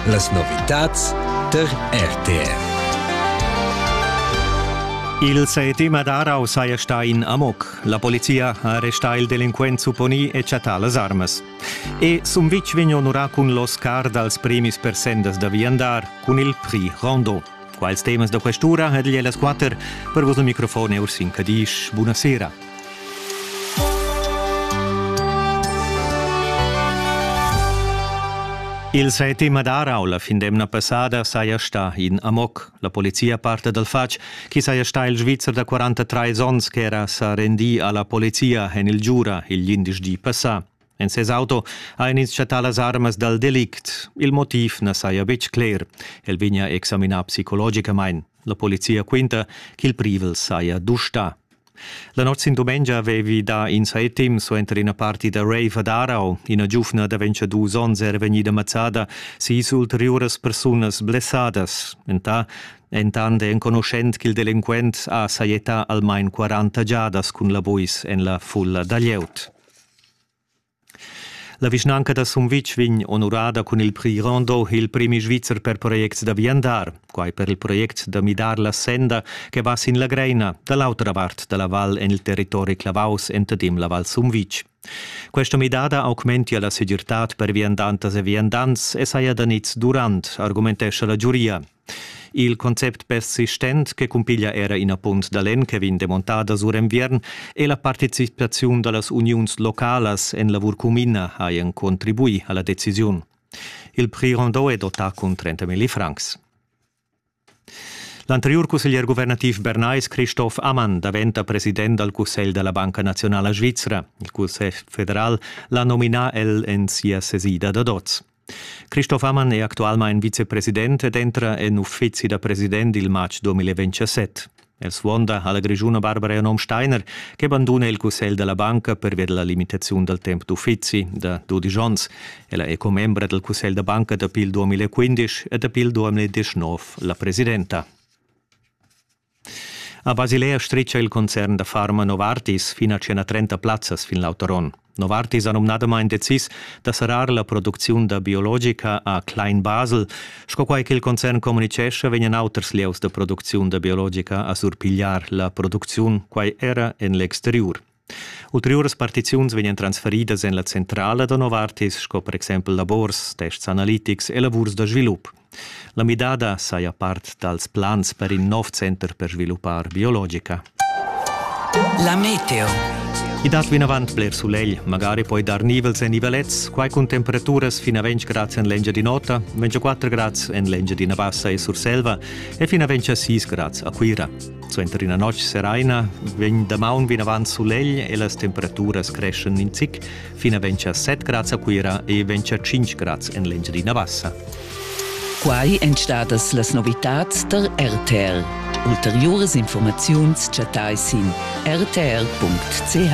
Las novitads tar RTR. Il settima d'Arau saja stà in amok. La polizia ha arrestà il delinquent supponì e chattà las armas. E Sumvitg vegn onurà cun l'Oscar dals premis per sendas da viandar cun il Prix Rondeau. Quals temas da quest'ura ed igl las quatter per vos microfon e Ursin Cadisch. Buonasera. Il settima d'Arau la fin d'emna passada saja sta in Amok. La polizia parte dal fatg chi saja sta il Svizzer da 43 ons che era sa rendi alla polizia en il Giura il 11 di passà. En ses auto ha ins chattà las armas dal delict. Il motiv na saja betg cler. El vegnia examinà psicologicamain. La polizia quinta ch'il privel saja dustà. La notg sin dumengia avevi dà in saitim suenter ina parti da rave ad Aarau. Ina giuvna da 22 onns era vegnida mazzada, sis ulteriuras persunas blessadas. Entà Entant è enconuschent ch'il delinquent ha sajettà almain 40 giadas cun la buis en la fulla da glieud. La vischnanca da Sumvitg vegn onurada cun il prix Rondo il premi svizzer per projects da viandar, quai per il project da midar la senda che va sin la Greina da l'autra vart da la val en il territori clavaus entadim la Val Sumvitg. Questa midada augmentia la segirtad per viandantas e viandants e saja da niz durant, argumentescha la giuria. Il concept persistent che cumpiglia era ina punt da lenn che vegn demontada sur enviern e la participaziun dallas uniuns localas en lavur cumina hajan contribuì alla decisiun. Il prix Rondeau è dotà cun 30.000 francs. L'anteriur cusseglier guvernativ bernais Christoph Ammann daventa president dal Cussegl da la Banca Nazionala Svizra. Il Cussegl federal l'ha nominà el en sia sesida da dots. Christoph Ammann è actualmain vicepresident ed entra en uffizi da president il matg 2027. El suonda alla grigiuna Barbara Janom Steiner, che banduna il cussegl della banca pervia della limitazione del tempo d'uffizi da 12 onns. Ella è commembra del cussegl da banca dapi il 2015 e dapi il 2019 la presidenta. A Basilea stricha il concern da farma Novartis fin a tschena 30 plazzas fin l'autoron. Novartis ha numnadamain decis da serrar la producziun da biologica a Klein Basel. Sco quai ch'il concern communitgescha, vegnan auters lieus da producziun da biologica a surpigliar la producziun, quai era en l'exteriur. Ulteriuras partiziuns vegnan transferidas en la centrala da Novartis sco per exempel labors, tests analitics e lavurs da svilup. La midada saja part dals plans per in nov center per sviluppar biologica. La meteo. I dat vinavant bler sulegl, magari poi dar nivels e nivelets, quai cun temperaturas fin a 20 grads en l'Engiadin'Ota, 24 grads en l'Engiadina Bassa e Surselva e fin a 26 grads a Cuira. Suenter ina notg seraina vegn damaun vinavant sulegl e las temperaturas creschan in zic fin a ventscha 7 grads a Cuira e ventscha 5 grads en l'Engiadina Bassa. Quai èn stadas las novitads tar RTL. Ulteriuras informaziuns chattai sin rtl.ch.